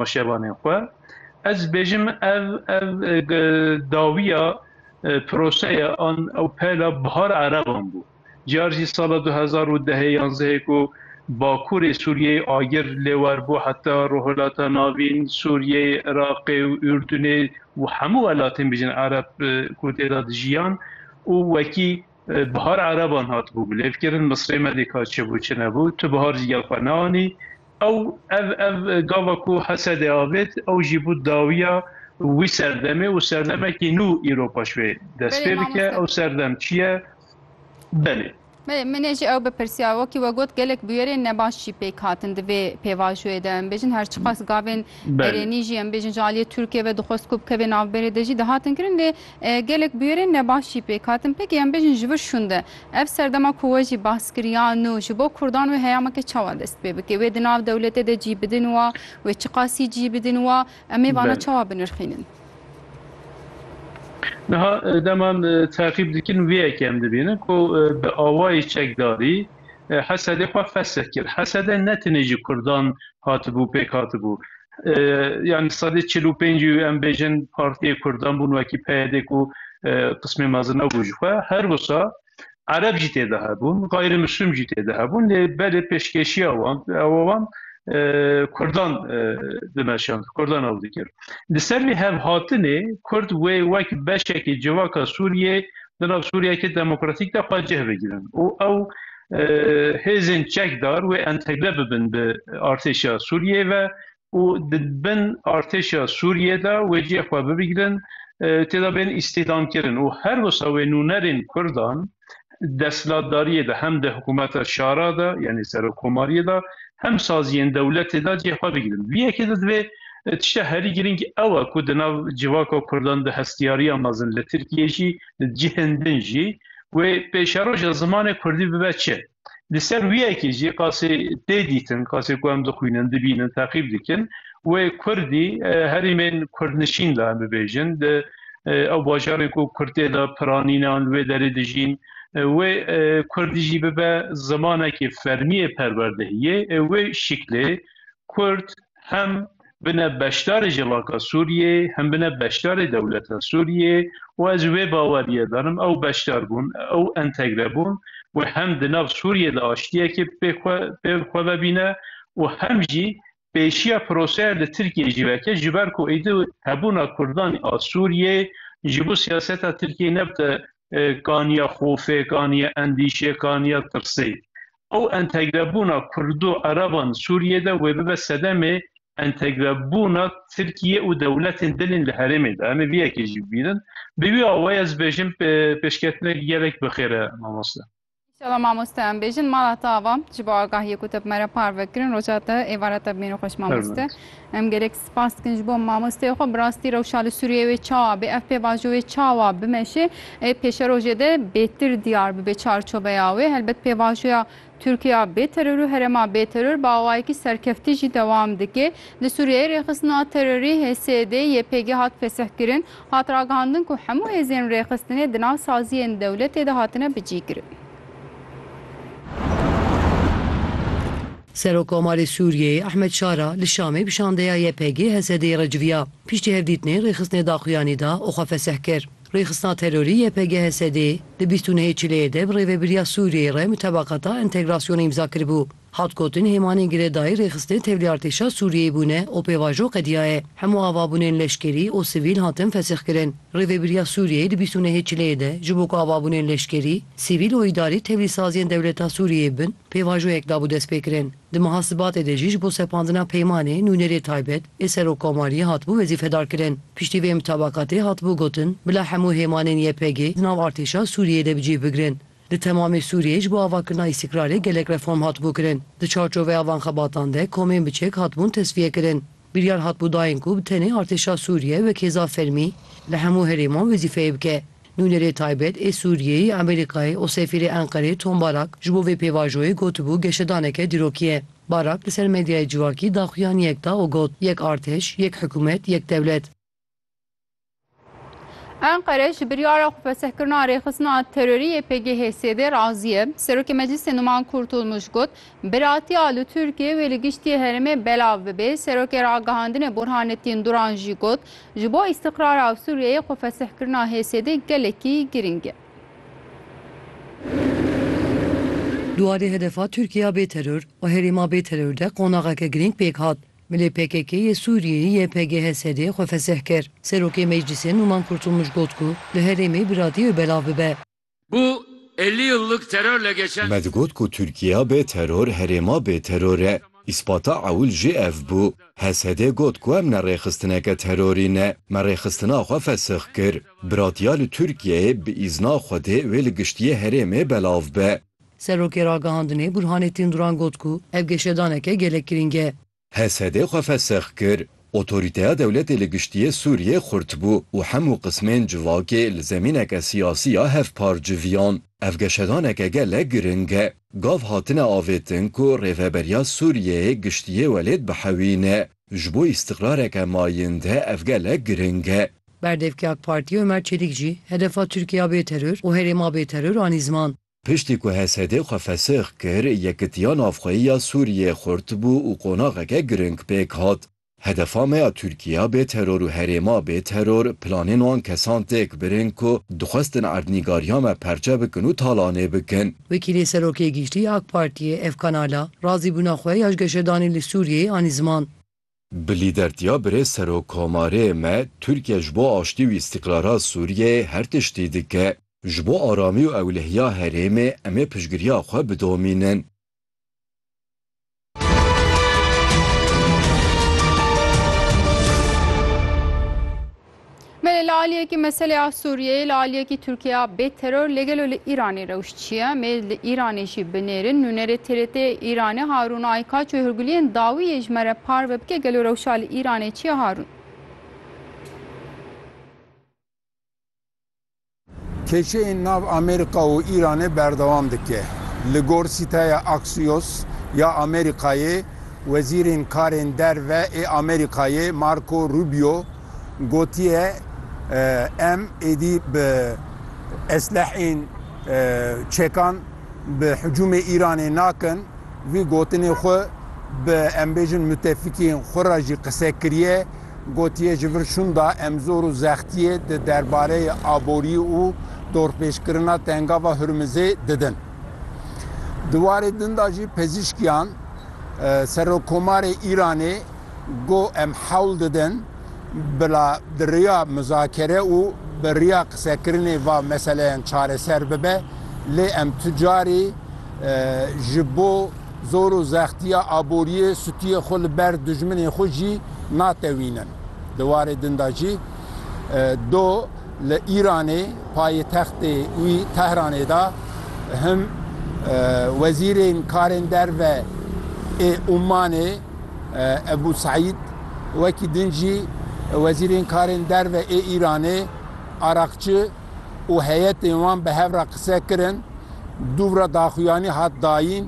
roşevanên xwe. Ez dibêjim ev ev dawiya proseya an ew peyla bihara ereban bû. Car jî sala du hezar û dehê yanzdehê ku Bakurê Sûriyeyê agir lêwer bû heta Rojhilata Navîn, Sûriyeyê, Iraqê û Urdunê û hemû welatên bijîn ereb ku tê de dijiyan û wekî Bihar ereban hatibû bilêvkirin, Misrê me dî ka çi bû çi nebû, tu bihar jî gel xwe neanî. Ew ev ev gava ku Hesedê avêt ew jî bû dawiya wî serdemê û serdemekî nû îro paş wê dest pê bike. Ew serdem çi ye? Belê. Belê, min ê jî ew bipirsiya. Wekî we got gelek bûyerên nebaş jî pêk hatin di vê pêvajoyê de. Em bêjin her çiqas gavên erênî jî em bêjin ji aliyê Tirkiyê ve dixwest ku bikeve navberê de jî dihatin kirin lê Gelek bûyerên nebaş jî pêk hatin pêkê em bêjin ji vir şûnde. Ev serdema ku we jî behs kir ya nû ji bo kurdan wê heyameke çawa dest pê bike, wê di nav dewletê de cî bidin wa, wê çiqasî cî bidin wa, em ê vana çawa binirxînin? Niha dema em teqîb dikin vê yekê em dibînin ku bi awayî çekdarî, Hesedê xwe fesih kir. Hesede ne tenê ji kurdan hatibû pêk hatibû. Yanî sedê çil û pêncî em bêjin partiyê kurdan bûn wekî PYD ku qismê mezin nebû ji xwe. Her wisa Ereb jî tê de hebûn, gayrimûslim jî tê de hebûn lê belê pêşkêşiya wan ew wan kurdan dimeşand, kurdan ew dikir. Li ser vê hevhatinê kurd wê wek beşekî civaka Sûriyê di nav Sûriyeyeke demokratîk de xwe cih bigirin û ew hêzên çekdar wê entegre bibin bi artêşa Sûriyeyê ve û di bin artêşa Sûriyeyê de wê cihê xwe bibigirin têda bên îstîhdamkirin û her wisa wê nûnerên Kurdan desthilatdariyê de hem di hikûmeta şara de yanî serokkomariyê de hem saziyên dewletê de cihê xwe bigirin. Viyekê de divê Tişta herî girîng ew e ku di nav civaka Kurdan di hestiyariya mezin li Tirkiyê jî di cihên din jî wê pêşeroja zimanê Kurdî bibe çi. Li ser wî yekê jî qasê tê dîtin, qasê ku em dixwînin, dibînin, teqîb dikin wê Kurdî herîmên Kurdnişîn de em bibêjin, di ew bajarên ku Kurd tê de piranîne an li wê derê dijîn, wê Kurdî jî bibe zimanekî fermî yê perwerdehiyê, wê şiklê Kurd hem bine beşdarê civaka Sûriyê, hem bine beşdarê dewleta Sûriyê û ez ji wê baweriyê de nim ew beşdarbûn, ew entegrebûn wê hem di nav Sûriyê de aştiyekê pê xwe ve bîne û hem jî pêşiya proseya li Tirkiyeyê jî veke ji ber ku êdî hebûna Kurdan a Sûriyê ji bo siyaseta Tirkiyeyê nebite kaniya xofê, kaniya endîşê, kaniya tirsê. Ew entegrebûna Kurd û Ereban Sûriyê de wê bibe sedemê entegrebûna Tirkiyê û dewletên din ên li herêmê de. Em ê vê yekê jî bibînin. Bi wî awayê ez dibêjim pêşketinekî gelek bi xêr e mamoste. Înşallah mamoste em bêjin. Mala te ava ji bo agahiyê ku te bi me re parve kirin. Roja te êvarete bimîne xweş mamoste. Em gerek spas dikin ji bo mamosteyê xwe. Bi rastî rewşa li Sûriyeyê wê çawa bê? Ev pêvajo wê çawa bimeşê? Ê pêşerojê de bêtir diyar bibe çarçoveya wê. Helbet pêvajoya Tirkiya bê teror û herêma bê teror bi awayekî serkeftî jî dewam dike. Li Sûriyeyê rêxistina terorî HSD, YPG hat fesihkirin. Hat ragihandin ku hemû hêzên rêxistinê di nav saziyên dewletê de hatine bicîkirin. Serokkomarê Sûriyeyê Ehmed Şara li Şamê bi şandeya YPG, HSD'ê re civiya. Piştî hevdîtinê rêxistinê daxuyanî da û xwe fesih kir. Rêxistina terorî YPG, HSD'ê di bîst û nehê Çileyê de bi Rêvebiriya Sûriyeyê re mutabakata entegrasyonê îmza kiribû. Hat gotin hêmanên girêdayî rêxistinê tevlî artêşa Sûriyeyê bûne û pêvajo qediya ye. Hemû avabûnên leşkerî û sivîl hatin fesihkirin. Rêvebiriya Sûriyeyê di bîst û nehê Çileyê de ji bo ku avabûnên leşkerî, sivîl û îdarî tevlîsaziyên dewleta Sûriyeyê bin, Pêvajoyek dabû destpêkirin. Di meha Sibatê de jî ji bo sepandina peymanê, nûnerê taybet, ê Serokkomariyê hatibû wezîfedarkirin. Piştî vê mitabakatê hatibû gotin, bila hemû hêmanên YPG'ê di nav artêşa Sûriyeyê de bi cih bigirin. Di temamê Sûriyeyê ji bo avakirina îstîkrarê gelek reform hatibû kirin. Di çarçoveya van xebatan de komên biçek hatibûn tesfiyekirin. Biryar hatbû dayîn ku bi tenê artêşa Sûriyê wek hêza fermî li hemû herêman wezîfeyê bike. Nûnerê taybet ê Sûriyeyê Amerîkayê û sefîrê Enqereyê Tom Barak ji bo vê pêvajoyê gotibû geşedaneke dîrokî ye. Barak li ser medyayê civakî daxuyaniyek da û got, Yek artêş, yek hikûmet, yek dewlet. Enqere ji biryara xwe fesehkirina rêxistina terorî yê PGH'ê sêdê razî ye. Serokê Meclîsê Numan Kurtulmuş got, Biratiya li Tirkiyeyê wê li giştî herêmê belav bibe. Serokê Ragihandinê Burhanettin Duran jî got, Ji bo îstiqrara Sûriyeyê xwe fesehkirina HSD gelekî girîng e. Di warê hedefa Tirkiya bê teror û herêma bê teror de qonaxeke girîng pêk hat. Milê pkk yê Sûriyeyê, YPGHSD, xwe fesih kir. Serokê Meclîsê Nûman Kurtulmuş got ku li herêmê biratî wê belav bibe. Bu elli yıllık terörle geçen. Me digot ku Tirkiya bê teror herêma bê teror e. Îspata ewil jî ev bû. HSD got ku em ne rêxistineke terorî ne. Me rêxistina xwe fesih kir. Biratiya li Tirkiyeyê bi îzna Xwedê wê li giştiyê herêmê belav be. Serokê Ragihandinê Burhanê Tînduran got ku ev geşedaneke gelek girîng e. HSD'ê xwe fesex kir. Otorîteya dewletê li giştiyê Sûriyê xurt bû û hemû qismên civakê li zemîneke siyasî ya hevpar civiyan. Ev geşedaneke gelek girîng e. Gav hatine avêtin ku Rêveberiya Sûriyeyê giştiyê welêt bihewîne. Ji bo îstiqrareke mayînde ev gelek girîng e. Berdevkê AK Partiyê Omer Çelîk jî hedefa Tirkiya bê teror û herêma bê teror anî ziman. Piştî ku HSD'ê xwe fesix kir, yekitiya navxweyî ya Sûriyeyê xurt bû û qonaxeke girîng pêk hat. Hedefa me ya Tirkiya bê teror û herêma bê teror planên wan kesan têk birin ku dixwestin erdnîgariya me perçe bikin û talanê bikin. Wekîlê Serokê Giştî ya AK Partiyê ev kanala razîbûna xwe ya ji geşedanê li Sûriyeyê anî ziman. Bi lîdertiya birêz Serokkomarê me, Tirkiye ji bo aştî û îstîqrara Sûriyeyê her tiştî dike. Ji bo aramî û ewlehiya herêmê em ê piştgiriya xwe bidomînin. Belê li aliyekî meselê a Sûriyeyê li aliyekî Tirkiya bê teror lê gelo li Îranê rewş çi ye? Mê li Îranê jî binêrin nûnerê TRT'ê Îranê Harûn Aykaç û Hurguliyên dawî yê ji me re parve bike gelo rewşa li Îranê çi ye Harûn? Kêşeyên nav Amerîka û Îranê berdewam dike. Li gor sîteya Axios ya Amerîkayê, wezîrên karên derve ê Amerîkayê Marco Rubio gotiye em êdî bi esleheyên çekan bi hicûmê Îranê nakin. Vî gotinê xwe bi em bêjin mutefîkiyên xwe re jî qise kiriye. Gotiye ji vir şûnda Emzor û Zextiyê di derbareyê aboriyê û dorpêçkirina Tengava Hurmizê didin. Di warê din de jî pezîşkiyan Serokkomarê Îranê got em hewl didin bila di riya muzakere û bi riya qisekirinê va meseleyan çareser bibe lê em tu carî ji bo Zor û zextiya aboriyê stûyê xwe li ber dijminên xwe jî natewînin. Di warê din de jî do li Îranê payitextê wî Tehranê de him wezîrên karên derve ê Ûmanê Ebû Seîd wekî din jî wezîrên karên derve ê Îranê Araqçi, û heyetên wan bi hev re qise kirin, dûvra daxuyanî hat dayîn,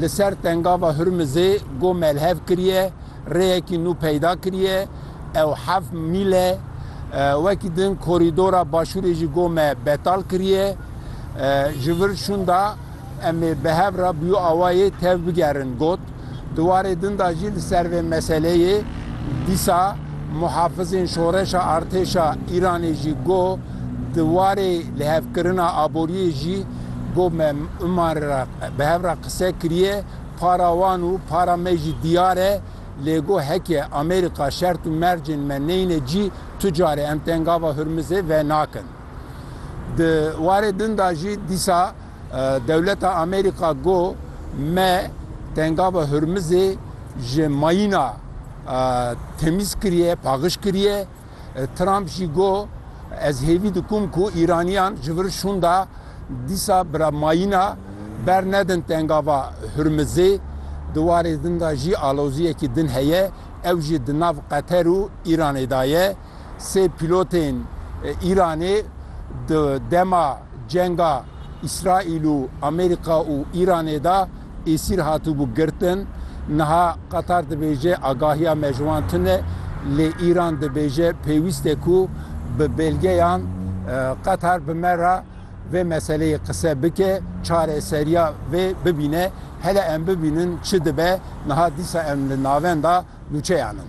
li ser Tengava Hurmizê go melhev kiriye, rêyekî nû peyda kiriye, ew heft mîl e. Wekî din korîdora Başûrê jî go me betal kiriye. Ji vir şûnda em ê bi hev re bi yo awayê tevbigerin, got. Di warê din de jî li ser vê meseleyê dîsa muhafizên şoreşa artêşa Îranê jî got, Di warê lihevkirina aboriyê jî got me iman re bi hev re qise kiriye, para wan û para me jî diyar e, lê got heke Amerîka şert û mercên me neyne cî tu carê em tengava Hurmizê venakin. Di warê din de jî dîsa. Dewleta Amerîka got me Tengava Hurmizê ji mayîna temîz kiriye, paxiş kiriye. Trump jî got ez hêvî dikum ku Îraniyan ji vir şûnda dîsa bira mayîna bernedin Tengava Hurmizê. Di warê din de jî aloziyekî din heye ew jî di nav Qeter û Îranê de ye. sê pîlotên Îranê di dema cenga Îsraîl û Amerîka û Îranê de êsîr hatibû girtin. Niha Qatar dibêje agahiya me ji wan tune, lê Îran dibêje pêwîst e ku bi belgeyan Qatar bi me re vê meseleyê qise bike, çareseriya vê bibîne. Hele em bibînin çi dibe, niha dîsa em li navenda nûçeyan in.